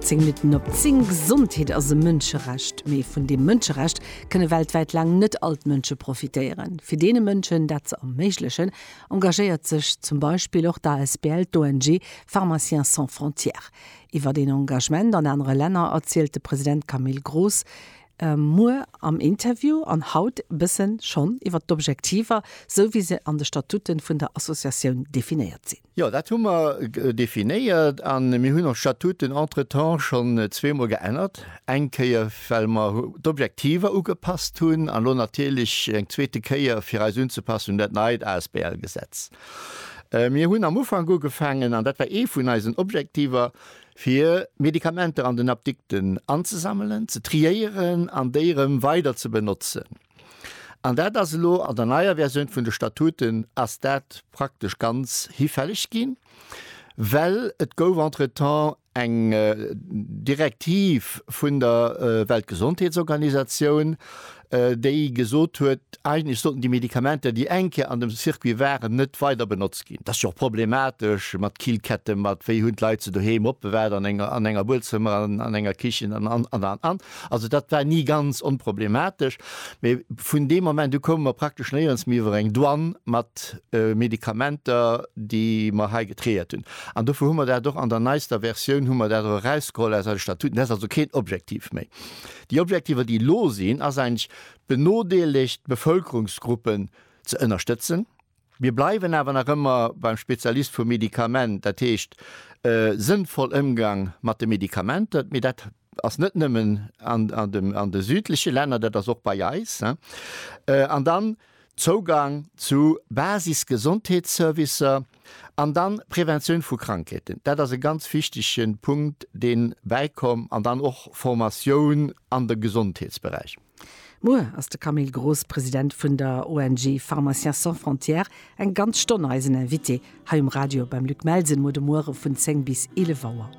Zéng Minutten op zéng, Gesondheet ass e Mënscherecht. Mee vun deem Mënscherecht kënne weltwäit laang net all d'Mënsche profitéieren. Fir deene Mënschen dat ze erméiglechen, engagéiert sech zum Beispill och d'asbl d'ONG Pharmaciens sans frontières. Iwwert een Engagement an anere Länner erzielt de President Camille Gross. Muer am Interview an haut e bësse schonn iwwert d'Objektiver, sou wéi se an de Statuten vun der Associatioun definéiert sinn. Jo, dat hu mer definéiert a mir hunn ons Statuten entretemps schonn zweemol geännert. Eng Kéier, well mer d'Objektiver ugepasst hunn an elo natierlech eng zweete Kéier, fir eis unzepassen un dat neit ASBL-Gesetz. Mir hunn am Ufank ugefaangen, an dat war ee vun eisen Objektiver, fir Medikamenter an den Apdikten anzesammelen, ze triéieren an déi erëm weider ze benotzen. An dat ass elo an der neier Versioun vun de Statuten ass dat praktesch ganz hifälleg ginn, well et gouf entretemps eng Direktiv vun der Weltgesondheetsorganisatioun, déi gesot huet, eigentlech sollten déi Medikamenter, déi eng Kéier an dem Circuit waren, net weider benotzt ginn. Et ass jo och problematesch mat Killketten, mat wéi hunn d'Leit se doheem opbewahrt, an enger, an enger Buedzëmmer, an enger Kichen an, an, an, an, an. Also dat war ni ganz onproblematesch. Mee vun deem Moment u koume mer praktesch néierens méi iwwer eng Douane mat Medikamenter, déi mer hei getréiert hunn. An dofir hu mer dat och an der neister Versioun, hu mer dat och erausgeholl aus eise Statuten. Dat ass also keen Objektiv méi. Déi Objektiver, déi elo sinn, ass eigentlech d'benodeelegt Bevëlkerungsgruppen ze ënnerstëtzen. Mir bleiwen awer nach ëmmer beim Spezialist vum Medikament, dat heescht e sënnvoll Ëmgang mat de Medikamenter. Mee dat ass net nëmmen an de südleche Länner, dat ass och bei eis. An dann Zougang zu Basis-Gesondheetsservicer an dann Preventioun vu Krankheeten, dat ass e ganz wichtege Punkt, dee bäikomm, an dann och Formatioun an de Gesondheetsberäich. Muer ass de Camille Gross, President vun der ONG Pharmaciens sans frontières, eng ganz Stonn eisen Invité hei um Radio beim Luc Melsen, muer de Muere vun 10 bis 11 Auer.